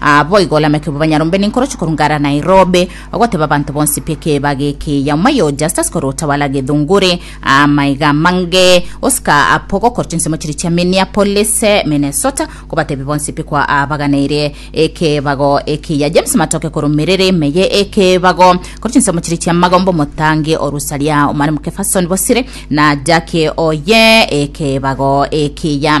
Naboigo olamekigwe banyarombe nenkorocho korwa Ngara Nairobi, ogoteba abanto bonsi pi ekebaga eke ya omwa yo Justus korwa otawala gethunguri amaiga amange osika apo gokora chinsemo chiria chia Minneapolis, Minnesota, kobatebia bonsi pi kwa abaganeire ekebago eke ya James Matoke korwa emerero ime ye ekebago korwa chinsemo chiria chia Magomba omotangi o Rusaria Omwalimu Kefferson Bosire na Jackie oye ekebago eke ya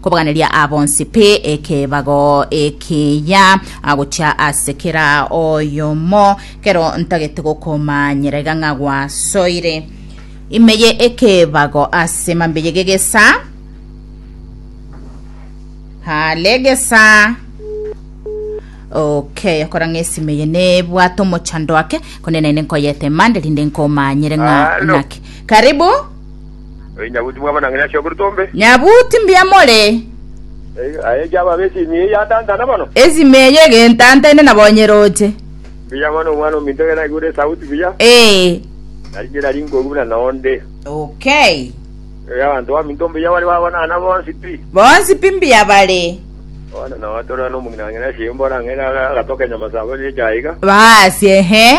Kobaganeria aa bonsi pe ekebago ekiya, gochia ase kera oyomo, kero ntagete gokomanyera iga ng'a gwasoire ime ye ekebago ase mambe ye gegesa hale gesa okay okora ng'a esime ye nebwate omochando ake konde naende nkoyete mande rinde nkomanyere ng'a Halo. naki karibu Oyo nyabuti mwabo na ng'ina shioku ritombe. Nyabuti mbuya more. Eyo, aye chiaba abe esimi eye yatantana mono. Esimi eye egentantaine na bonye roche. Mbuya mono omwana ominto gene aigure esauti buya. Ee. Nari nera rinkogu buna nonde. Okay. Eyo abanto baminto mbuya bare babonana bonsi pi. Bonsi pi mbuya bare. Bono nao atorana omong'ina na ng'ina shie mbore ang'e na agatoka enyama saa abere echa aiga. Baasi, ehe.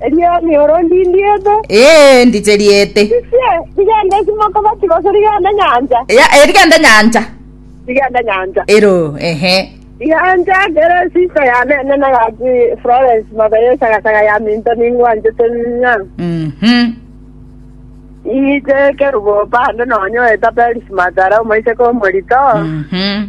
Erio emioro ndindiete. Ee, ndicheriete. Risie, rigende esimoko bati gose rigende nyancha. Ya, eh, rigende nyancha. Rigende nyancha. Ero, ehe. Nyancha kere sister ya nene na gati Florence mabeye sagasaga ya minto ningwanchete ng'a. Mhm. Iite kerubo bande nonye oeta Peris Matara omoiseke omorito. Mhm.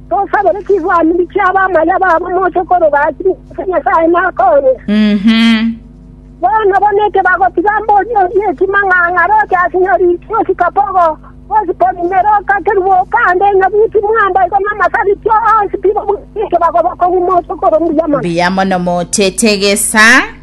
Tosabere chigwaniri chi'abamaya babo moche koroba ase Jehova Nyasae nakonya. Bono bona eke bagotiga mbori eria etima ng'a ng'aroche ase nyori ria osikapogo, osipori ne roka kerubo okande enyabuti mwamba igo namasabiti onsi bibo buna eke bagoba kogima oche korwa mbuya mono. Mbuya mono moche tegesa.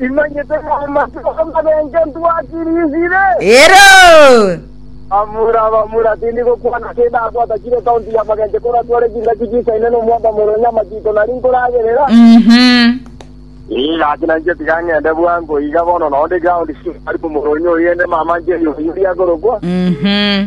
Imanyete namachiko amarenge ntwatirisire? Ero. Amura, abamura, tindi gokwana ase edabu atakire ekaunti y'amagencho koratware chingaki chisaine nomwabamura onye amachiko nari nkoragerera. Mhm. Ee, gaki nainche tiga ng'ende bwango iga bono nao ndi ground, Simari omoro onye oyende mama Njeri oyio riakorokwa. Mhm.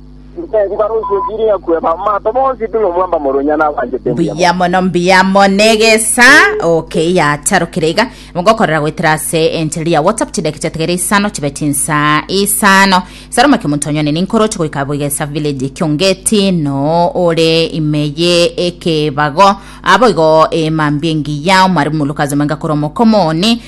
Mbuya mono, mbuya mono egesa. Okay, yacharokire iga. Mogokorera goetera ase enchiriri ya WhatsApp chidaki chiatigere isano chibe chinsa isano. Salome Kimuntonyoni ninkoroche goika Bugesa Village Kiongeti no ore imeye ekebago. Abo igo emambia engiya omwarimu Lucas Omenga kore omokomo one